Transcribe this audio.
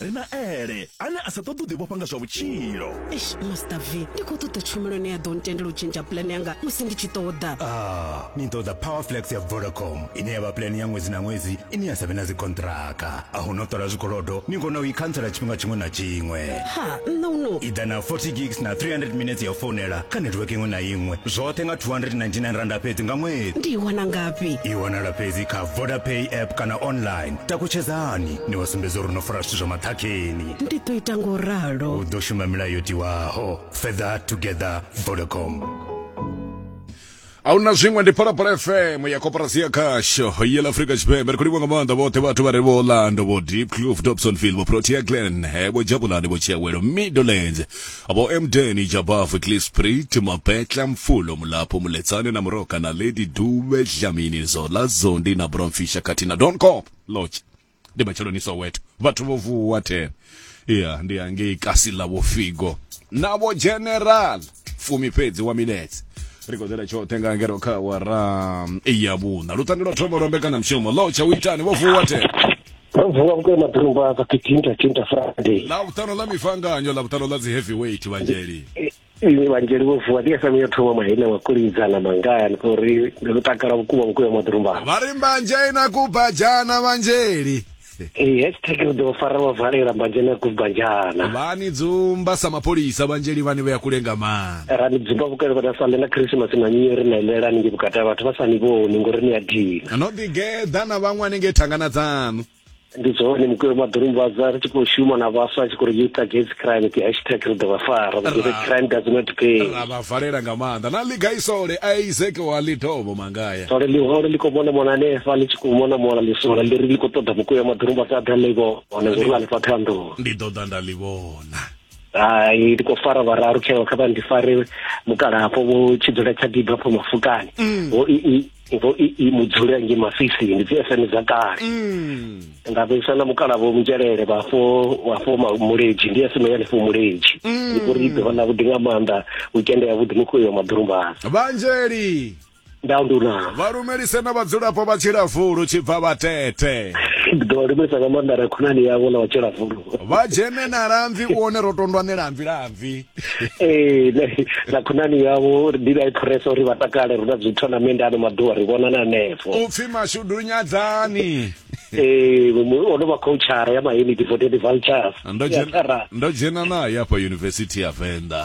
Ri na Ele, ane a sa ṱoḓi u ḓivhofha nga zwa vhutshilo. Eish, Master V, ndi khou ṱoḓa tshumelo ine ya ḓo ntendela u tshentsha pulane yanga musi ndi tshi ṱoḓa. Ah, ni ṱoḓa Powerflex ya Vodacom, ine ya vha pulane ya ṅwedzi na ṅwedzi ine ya sa vhe na dzikonṱhiraka. A hu na u ṱola zwikolodo, ni kona u i khantsela tshifhinga tshiṅwe na tshiṅwe. Ha, nṋa hu no. I ḓa na 40 gigs na 300 minetse ya u founela kha netiweke iṅwe na iṅwe, zwoṱhe nga R299 fhedzi nga ṅwedzi. Ndi i wana ngafhi? I wanala fhedzi kha Vodapay app kana online. Takutshedzani! ni wa sumbedza uri no fara zwithu zwa maṱhakheni ndi ḓo ita ngo ralo u ḓo shuma milayo yo tiwaho feather together vodacom a hu na zwiṅwe ndi phalaphala fm ya koporasi ya khasho yela afrika tshipembe ri khou livha nga maanḓa vhoṱhe vhathu vha re vho orlando vho deep cloof dobsonville vho protea glen vho jabulani vho tshiawelo middlelands vho emdeni jabafu clisprit mapetla mfulo mulapho muletsane na muroka na lady dube dlamini zola zondi na bromfisha khathihi na don cop lodge ndi matsheloni soweto vhathu vho vuwa ten iya ndi hangei kasi ḽa vho figo na vho general fumi fhedzi wa minetse ri khou ḓela tshoṱhe nga ngero kha wara ya vhuṋa luṱange lwa thoma lwa mbekanamushumo ḽo tsha u itani vho vuwa ten ro vuwa vhukuma ḓorumba sa kitinta tinta friday ḽa vhuṱano ḽa mifanganyo ḽa vhuṱano ḽa dzi heavyweight vhanzheli vhanzheli vho vuwa ndi fm yo thoma maina wa kulidzana mangaya ni khou ri ndi ḓo takala vhukuma vhukuma maḓirumbana vha ri mbanzhe na kubajana vhanzheli ee hashtag ri ḓo fara vha valela mbanzhe na kubajana vha ni dzumba sa mapholisa vhanzheli vhani vhe ya kule nga maanḓa ra ni dzumba vhukale vha na sale na khrisimasi na nyiri na ilela ninge vhukati ha vhathu vha sa ni vhoni ngori ni a dina no ḓi geḓa na vhaṅwe hanengei thangana dzanu ndi zwone mukweo maḓorumbaza ri tshi khou shuma na vhaswa a tshi khou ri youth against crime ti hashtag ri ḓo vha fara the crime does not pay ra vha valela nga maanḓa na liga isole isaac wa lidobo mangaya sole liholo li khou mona mona hanefha ḽi tshi khou mona mona ḽisola ḽi ri ḽi khou ṱoḓa mukweo maḓorumbaza a ḓa ḽi vhona ngori ḽa ḽifha thanḓo ndi ḓo ḓa nda ḽi vhona hai ndi khou fara vhararu tsheo kha vha ndi fare mukala hafho vho tshi dzula tsha diba hafho mafukani mm. vho ii vho ii mudzule nge mafisini ndi dzi fm dza kale mm. nda vhesa na mukala vho munzhelele vhafho vhafho muleji ndi fm ya lefo muleji mm. ndi kuri ḓo na vhuḓi nga maanḓa weekend ya vhuḓi mukho yo maḓurumbana vhanzheli nda nduna vha lumelise na vhadzulapo vha tshilafulu tshibva vhatete ndi ḓo vha lumelisa nga maanḓa ra khonani yavho na vhatshilafulu vha dzhene na lamvi u one ro tondwa ni lamvi lamvi ee ne- na khonani yavho ndi vha i phuresa uri vha takale ri na dzi tournament ano maḓuvha ri vhonana hanefho u pfi mashudu nyadzani ee mu- ono vha khouchara ya maheniti for twenty vultures ndo dzhena- ndo dzhena naye afha yunivesithi ya venḓa